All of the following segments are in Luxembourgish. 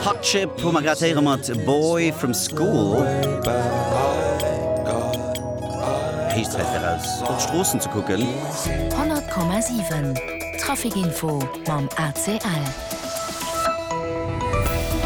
Hardship hu mer grad héiere mat Boy from School. Héich Zäit fir raus op d'Stroossen ze kucken. 100,7 Traficinfo mam ACL.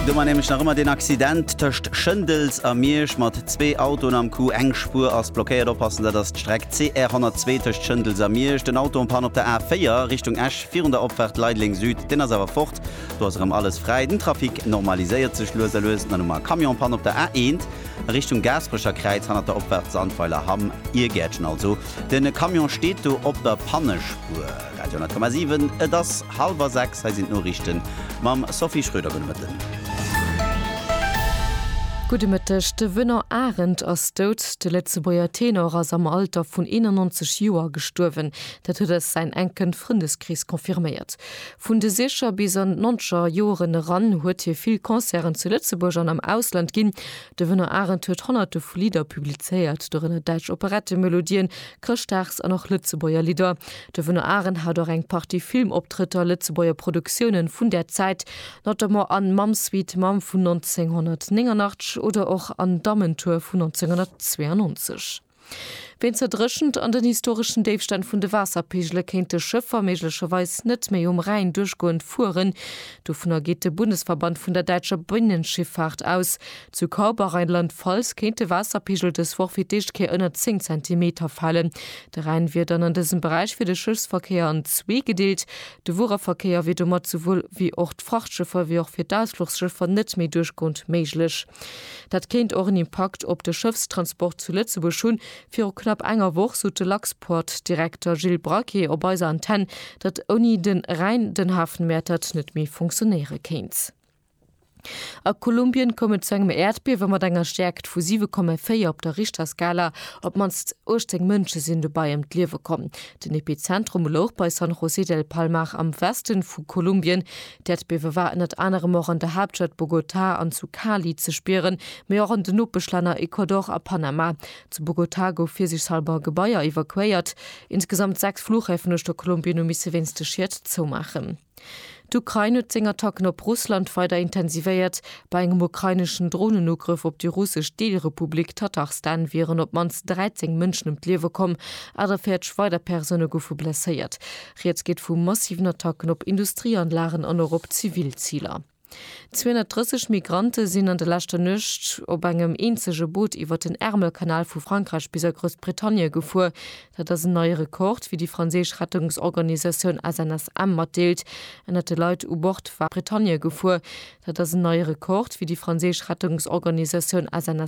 Do war nämlech nach ëmmer deen Accident tëscht Schëndels a Miersch mat zwee Autoen am Coup. Eng Spuer ass blockéiert. Oppassen, dat ass d'Streck CR 102 tëscht Schëndels a Miersch. Den Auto en panne op der A4 Richtung Esch virun der Opfaart Leideleng Süd, deen ass awer fort. Do ass erëm alles fräi, den Trafic normaliséiert sech lues a lues. Dann hu mer Camionspanne op der A1 a Richtung Gaasperecher Kräiz, hanner der Opfahrt Sandweiler Hamm, Irgäertchen also. De Camion steet do op der Pannespuer. Radio 10,7, et ass hallwer sechs, hei sinn d'Noriichten mam Sophie Schröder. Gudde Mëtten. Gudde Mëtteg. De Wënner Arendt ass dout. De Lëtzebuerger Tenor ass am Alter vun 91 Joer gestuerwen. Dat huet eis säin enken Frëndeskrees confirméiert. Vun de Sicher bis an d'Nonzger Joren eran huet hie vill Concerten zu Lëtzebuerg an am Ausland ginn. De Wënner Arend huet Honnerte vu Lidder publizéiert, dorënner däitsch Operettemelodien, Chrëschtdags an och Lëtzebuerger Lidder. De Wënner Arend hat och eng Partie Filmoptrëtter, Lëtzebuerger Produktiounen vun där Zäit, notamment an Mamm Sweet Mamm vun 1989 oder och an Dammentour vun 1992. Ween zerdréchent an den historeschen Déifstänn vun de Waasserpeegele kéinte Schëffer méiglecherweis net méi um Rhäin duerchgoend fueren. Dovunner geet de Bundesverband vun der däitscher Binnenschiffaart aus. Zu Kaub a Rheinland-Pfalz kéint de Waasserpeegel dës Woch fir d'éischt Kéier ënner 10 Zentimeter falen. De Rhäin wier dann an dësem Beräich fir de Schëffsverkéier an zwee gedeelt. De Wuereverkéier wier domat souwuel wéi och d'Frachtschëffer wéi och fir d'Ausfluchsschëffer net méi duerchgoend méiglech. Dat kéint och en Impakt op de Schëffstransport zu Lëtzebuerg hunn. Viru knapp enger Woch sot de Luxport-Direkter Gilles Braquet op eiser Antenn, datt ouni de Rhäin den Hafen Mäertert net méi funktionéiere kéint. A Kolumbien koum et zu engem Äerdbiewe mat enger Stäerkt vu 7,4 op der Richterskala. Op d'mannst 18 Mënsche sinn dobäi ëm d'Liewe komm. Den Epizentrum louch bei San José del Palmar am Weste vu Kolumbien. D'Äerdbiewe war ënnert anerem och an der Haaptstad Bogotá an zu Cali ze spieren, mee och an den Nopeschlänner Ecuador a Panama. Zu Bogotá gouf virsiichshalber e Gebaier evakuéiert. Insgesamt sechs Fluchhäfen uecht der Kolumbien hu misse wéinst de Schied zoumaachen. D'Ukrain huet seng Attacken op Russland weider intensivéiert. Bei engem ukraineschen Dronenugrëff op déi russesch Deelrepublik Tatarstan wieren op d'mannst 13 Mënschen ëm d'Liewe komm, 48 weider Persoune goufe blesséiert. Rieds geet vu massiven Attacken op Industrieanlagen an och op zivil Ziler. 230 Migrante sinn an de leschter Nuecht op engem eenzege Boot iwwert den Ärmelkanal vu Frankräich bis a Groussbritannie gefuer. Dat ass en neie Rekord, wéi déi franséisch Rettungsorganisatioun SNSM matdeelt. Ënnert de Leit u Bord war d'Groussbritannie gefuer. Dat ass en neie Rekord, wéi déi franséisch Rettungsorganisatioun SNSM.